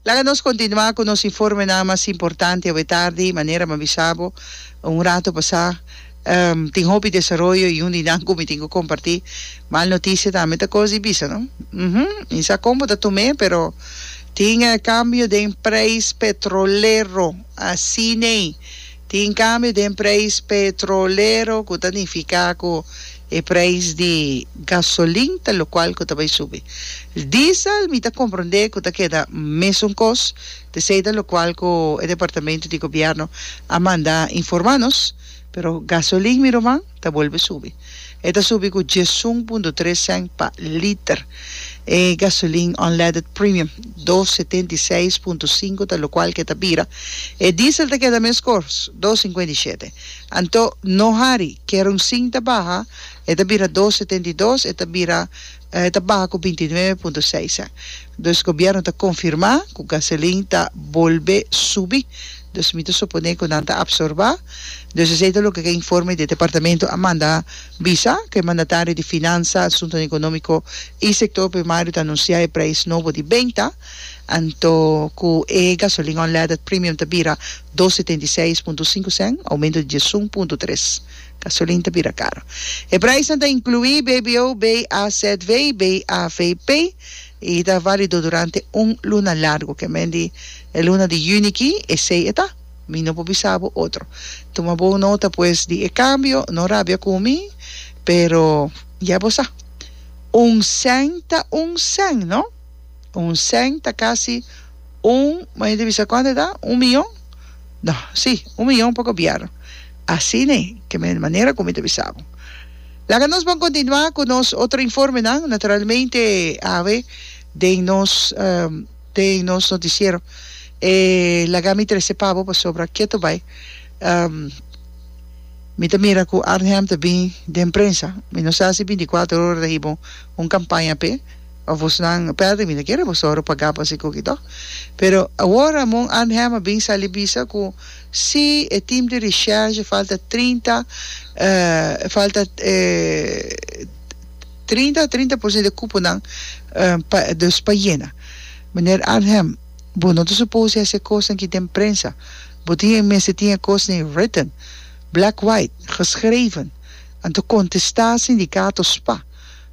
Laga nos kontinuá ku nos informenan mas importante awe tardi. Manera m'ha bisa bo un ratu pasá, tin hopi desaroyo i un di nan ku mi tin ku kompartí mal notisia tambe ta kos di bisa, no? Uhu. Mi sa kon bo ta tum'é, pero tin kambio den preis petrolero. Asin'ei. Tin kambio den preis petrolero ku ta nifiká ku e preis di gasolin ta lokual ku ta bai subi. Diesel mi ta komprondé ku ta keda mesun kos, p'esei ta lokual ku e departamentu di gobièrnu a mandá informá nos, pero gasolin mi ruman? ta bolbe subi. E ta subi ku dies un punto tres sènt pa liter. E gasolin unleaded premium dos setenta i seis punto sinku ta lokual ke ta bira. E diesel ta keda mes kors, dos sinkuenta i shete. Anto no hari, kerunsin ta baha, e ta bira dos setenta i dos, e ta bira E ta baha ku binti nuebe punto seis. Dus gobièrnu ta konfirmá ku gasolin ta bolbe subi, dus mi ta suponé ku nan ta apsorbá. Dus esei ta loke ku e informe di e departamentu a manda bisa, ku e mandatario di Finansa, Asuntonan Ekonómiko i Sektor Primario ta anunsiá e preis nobo di benta, anto ku e gasolin unleaded premium ta bira dos setenta i seis punto sinku sèn, oumento di diesun punto tres. Gasolin ta bira karo. E praisnan ta inkluí BBO, BAZV i BAVP i ta válido durante un luna largu. Ke men di e luna di yüni ki, esei e ta. Mi no por bisa bo otro. Tuma bon nota pues di e kambio. No rabia ku mi, pero ya bo sa. Un sèn ta un sèn, no? Un cent ta casi un, ma hende bisa cuantu ta? Un mion? No, si, un mion pa gobierno. Asine ke men manera ku mi ta bisa bo. Laga nos bon kontinua ku nos otro informenan, naturalmente awe den nos um, den nos notisiero. E laga mi trese pa bo pasobra ketu bai um, mi ta mira ku Arnhem ta bin den prensa. Mi no sa si binticuatro ora ta hib'un un kampaña p'e. Abosnan pèrdè mi ta kere boso ora pagá pa si kuki tò. Pero awor Ramon Arnhem a bin sali bisa ku si e tim di reshèrge falta trinta falta trinta trinta por sento di kuponan pa dus pa yena. Meneer Arnhem, bo no ta supose hasi e kosnan ki den prensa. Bo tin e mester tin e kosnan ei written, black white, geschreven, anto kontestá sindikato spa.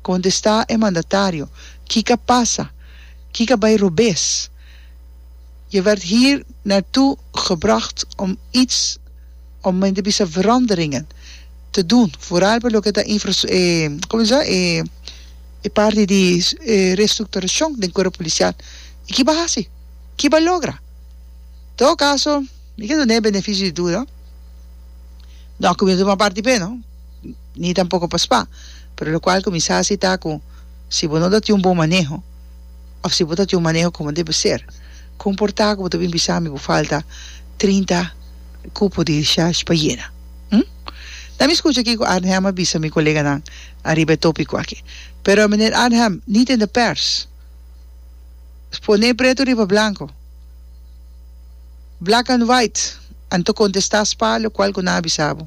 Contesta e mandatario, Kica pasa? Kica bay robes? Je werd hier naar toe gebracht om iets, om men te bisa veranderingen te doen, vooral pa loke ta infrastu, e, como se dice sa? E, e parti di e restructuracion den cuerpo policial. Y ki ba haci? Ki ba logra? Todo caso, mi ke duna e beneficio di duda. No a cuminsa tuma parti p'e no. ni tampoco pa spa, pero locual cu mi sa haci ta cu si bo no ta tin un bon maneho of si bo ta tin un maneho como debe ser, con por ta cu bo ta bin bisa mi bo falta trinta cupo di discharge pa yena? Hm? Na mi scucha kico Arnhem a bisa mi coleganan ariba e topico aki. Pero Meneer Arnhem, ni den de pers pone preto riba blanco, black and white, a nto contesta spa locual cu nan a bisa bo.